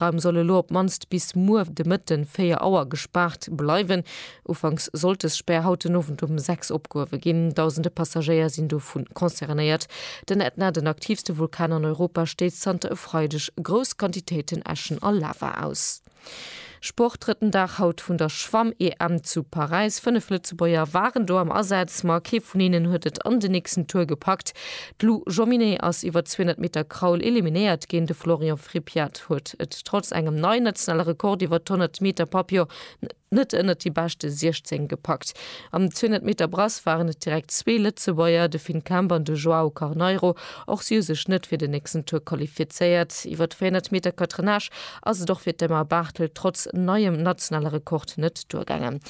Raum soll elo op d'mannst bis muer de Mëtten 4 Auer gespaart bleiwen. Ufanks sollt des Spär haut den Owend um 6 opgehuewe ginn. Dausende Passagéier sinn dovu concernéiert. Den Ätna, den aktiivste Vulkan an Europa, stéisst zanter e Freideg grouss Quantitéiten Äschen a Lava aus. Sport, Drëtten Dag haut vun der Schwamm-EM zu Paräis. Fënnef Lëtzebuerger waren do am Asaz, ma kee vun hinnen huet et an den nächsten Tour gepackt. D'Lou Jominy ass iwwer 200 Meter Kraul eliminéiert ginn. De Florian Frippiat huet et trotz engem neien nationale Rekord iwwer d'Honnert Meter Papillon net ënnert déi beschte 16 gepackt. Am 200 Meter Brass waren et direkt zwee Lëtzebuerger, de Finn Kemp an de Joao Carneiro. Och si hu sech net fir den nächsten Tour qualifizéiert. Iwwer d'Véierhonnert Meter Catenage ass et och fir d'Emma Barthel trotz neiem nationale Rekord net duergaangen.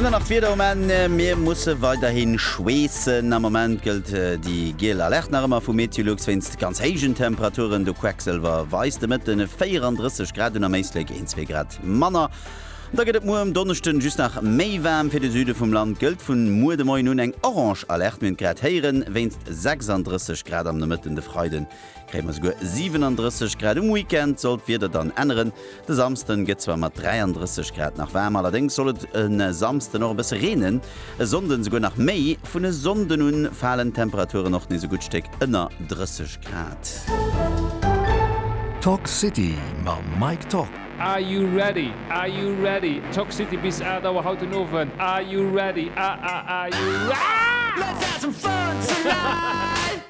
An dann nach d'Wieder um Enn, Mir musse weiderhi schweessen. Am Moment gëllt déi giel Alerte nach ëmmer vu Meteolux wéinst ganz héijen Temperaturen. De Quecksilwer weist de Mëtte 34 Grad un, am Éislek een, zwee Grad manner. Da gëtt et muer um Donneschden just nach méi waarm. Fir de Süde vum Land gëllt vun muer de Moien un eng orange Alerte, mir hunn et grad héieren, wéinst 36 Grad am Nomëtten. De Freiden kréie mer souguer 37 Grad. Um Weekend soll d'Wieder dann änneren, de Samsden gëtt zwar mat 33 Grad nach waarm, allerdéngs soll et e Samsden och e bësse reenen, e Sonnden souguer nach méi. Vun e Sonnden un falen d'Temperaturen och nees e gutt Stéck ënner 30 Grad. Toxcity mam Mike Top. Are you ready? Are you ready? Toxcity bis 8 Auer haut den Owend. Are you ready? Ah ah are you ready? Let's have some fun tonight!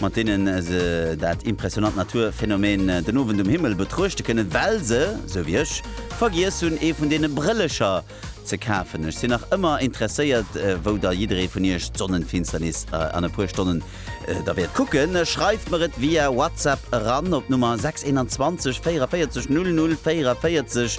mat deenen se dat impressionant Naturphänomen den Owend um Himmel betruechte kënnen, well se, sou wéi ech, vergiess hunn ee vun deene Brëllecher ze kafen. Ech sinn nach ëmmer interesséiert, wou da jidderee vun iech d'Sonnenfinsternis an e puer Stonnen da wäert kucken. Schreift mer et via WhatsApp eran op d'Nummer 621 44 00 44.